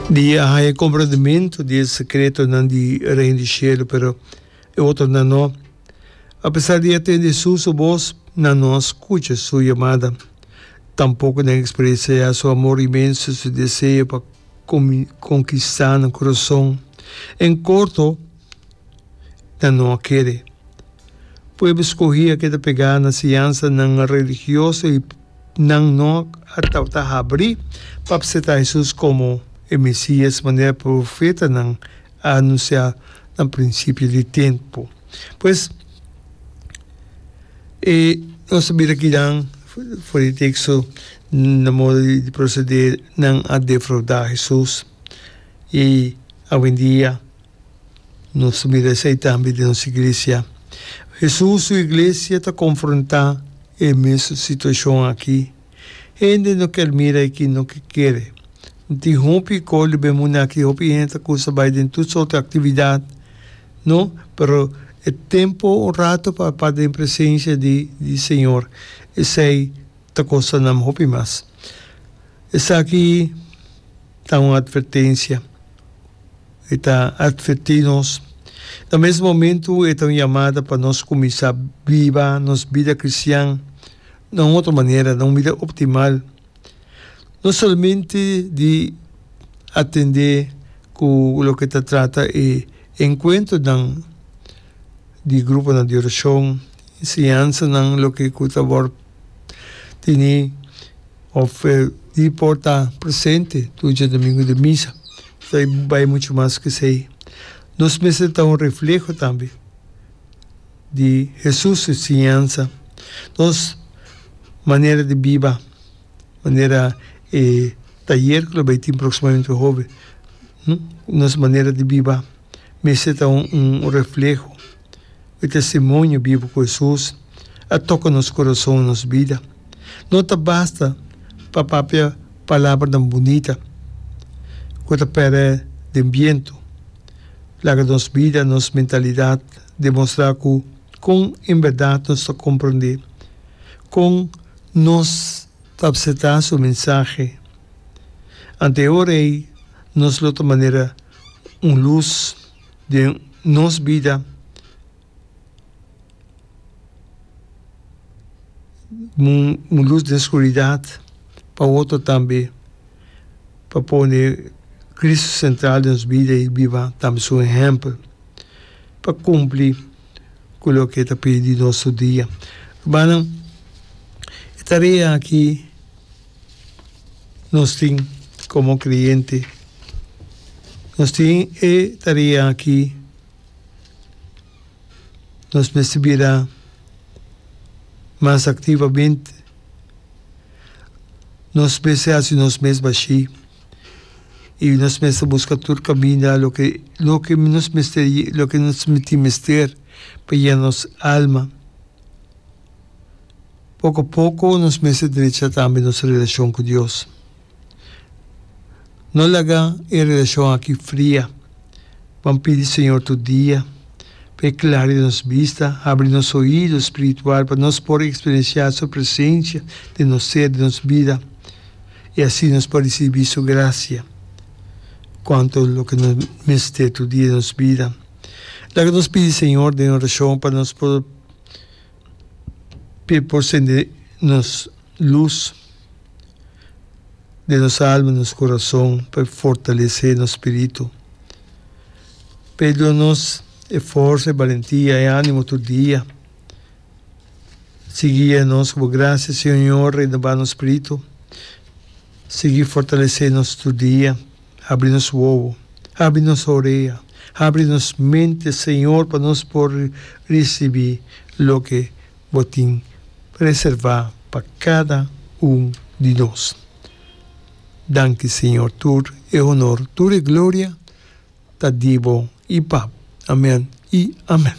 Di a haya e comprendementu di e secretonan di Reino di Cielo, pero e otronan no. A pesar di a tende Su su bos, nan no a scucha Su yamada. Tampoco nan experienciaja Su amor inmenso, Su deseo pa conquista nan curason. En corto, ta no a kere. Pueblo skohí a keda pegá na siansanan religioso i nan no a tabata habrí pa apseptá Hesus komo e Mesías manera profetanan a anunsiá na prinsipio di tempu. Pues, e nos a bira kinan for di teksto na modo di prosede nan a defraudá Hesus i awendia Nos ta mira esei tambe den nos iglesia. Hesus su iglesia ta konfrontá e mesun situashon akí. Hende no ker mira i kin no ke kere. No tin hopi koli be munda akí, hopi hende ku ta bai den tur sort di aktividat, no? Pero e tempu un ratu pa pa den presensia di di Señor, esei ta kostanan hopi mas. Esaki. ta un atvertencia. E ta atverti nos. Na mes momento e ta un yamada pa nos cuminsa biba nos bida cristian na un otro manera, na un mida optimal, no solamente di atende cu loke ta trata e encuentronan di gruponan di oracion, enseñansanan loke cu ta wor teni of di por ta presente tur djadomingo den misa. Ta bai mucho mas ke esei. Nos mester ta un refleho tambe di Hesus su enseñansa, nos manera di biba, manera e tayer ku lo bai tin proksimamente hove, nos manera di biba mester ta un refleho. E testimonio bibu ku Hesus a toka nos kurason i nos bida. No ta basta pa papia palabranan bunita ku ta pere den bientu. Laga nos bida, nos mentalidat demostrá ku kon en bèrdat nos ta komprendé, kon nos ta apseptá su mensahe. Ante e ora ei nos lo ta manera un lus. den nos bida un lus den skuridat pa otro tambe pa pone Cristo sentral den nos bida y biba tambe su ehempel pa cumpli cu loke e ta pidi di nos tur dia. Rumannan e tarea aki nos tin komo kreyente. Nos tin e tarea aki, nos mester bira mas aktivamente, nos mester hasi nos mes bashí i nos mester buska tur kaminda loke loke nos mester loke nos tin mester pa yena nos alma. Poko poko nos mester drecha tambe nos relashon ku Dios. No laga e relashon aki fria. Ban pidi Señor tur dia pa e klaria nos bista, habri nos oido spiritual pa nos por eksperensiá Su presensia den nos ser, den nos bida, i asi nos por risibí Su grasia kuantu loke nos mester tur dia den nos bida. Laga nos pidi Señor den orashon pa nos por. p'e por sende nos lus den nos alma, den nos kurason, p'e fortalesé nos spiritu, p'e duna nos e forsa, e balentia, e ánimo tur dia. Sigui guia nos ku bo grasia, Señor, renobá nos spiritu, sigui fortalesé nos tur dia. Habri nos wowo, habri nos orea, habri nos mente, Señor, pa nos por ricibi loke Bo tin reserva pa cada un di nos. Danki, Señor, tur e honor, tur e gloria ta di Bo y pa Bo. Amen y amen.